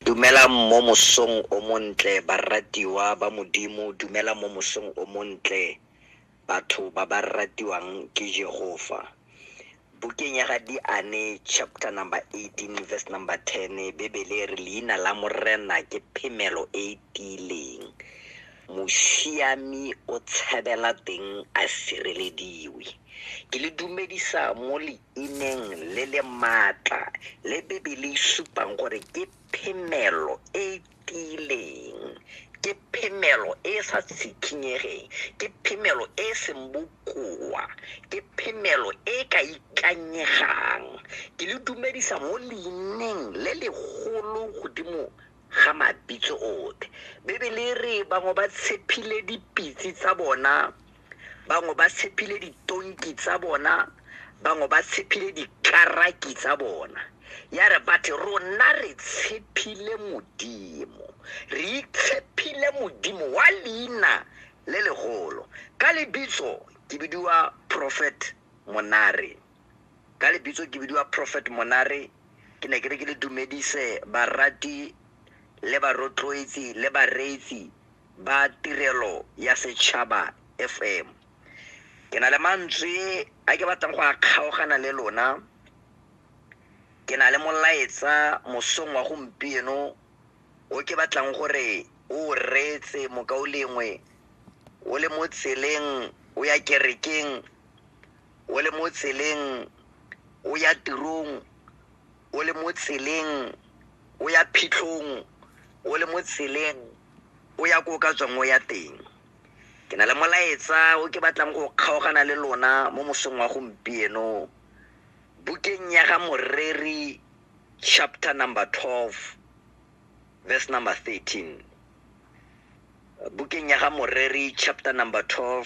Dumelang mo mosong o montle baratiwa ba Modimo, dumelang mo mosong o montle batho ba ba ratiwang ke Jehofa. Bukeng ya ga Diane chapter number 18 verse number 10 Bebele re leina la Morena ke phemelo e e tiileng. Mosiami o tshabela teng a sirelediwe. Ke le dumedisa mo le e neng le le maatla le Bibele e supang gore ke phemelo e e tiileng, ke phemelo e e sa tshikinyegeng, ke phemelo e e seng bokoa, ke phemelo e e ka ikanyegang. Ke le dumedisa mo leineng le legolo godimo ga mabitso otlhe. Bibele e re bangwe ba tshepile dipitse tsa bona bangwe ba tshephile ditonki tsa bona bangwe ba tshephile dikaraki tsa bona ya re bathe rona re tshephile modimo re itshephile modimo wa leina le legolo ka lebitso ke bidiwa prophet monare ka lebitso ke bidiwa prophet monare ke ne ke re ke le dumedise barati le barotloetsi le bareetsi ba tirelo ya setšhaba fm ke na le mantswe a ke batlang go a kgaogana le lona ke na le molaetsa mosong wa gompieno o ke batlang gore o reetse mokao lengwe o le mo tseleng o ya kerekeng o le mo tseleng o ya tirong o le mo tseleng o ya phitlhong o le mo tseleng o ya ko o ka tswang o ya teng ke na le molaetsa o ke batlang go kgaogana le lona mo mosong wa gompieno bukeng ya ga moreri chapter number 12 verse number 13 bukeng ya ga moreri chapter number 12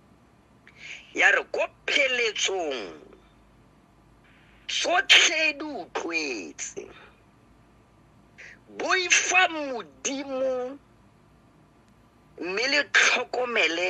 ya re ko pheletsong tsotlhe di utlwetse boifa modimo mme le tlhokomele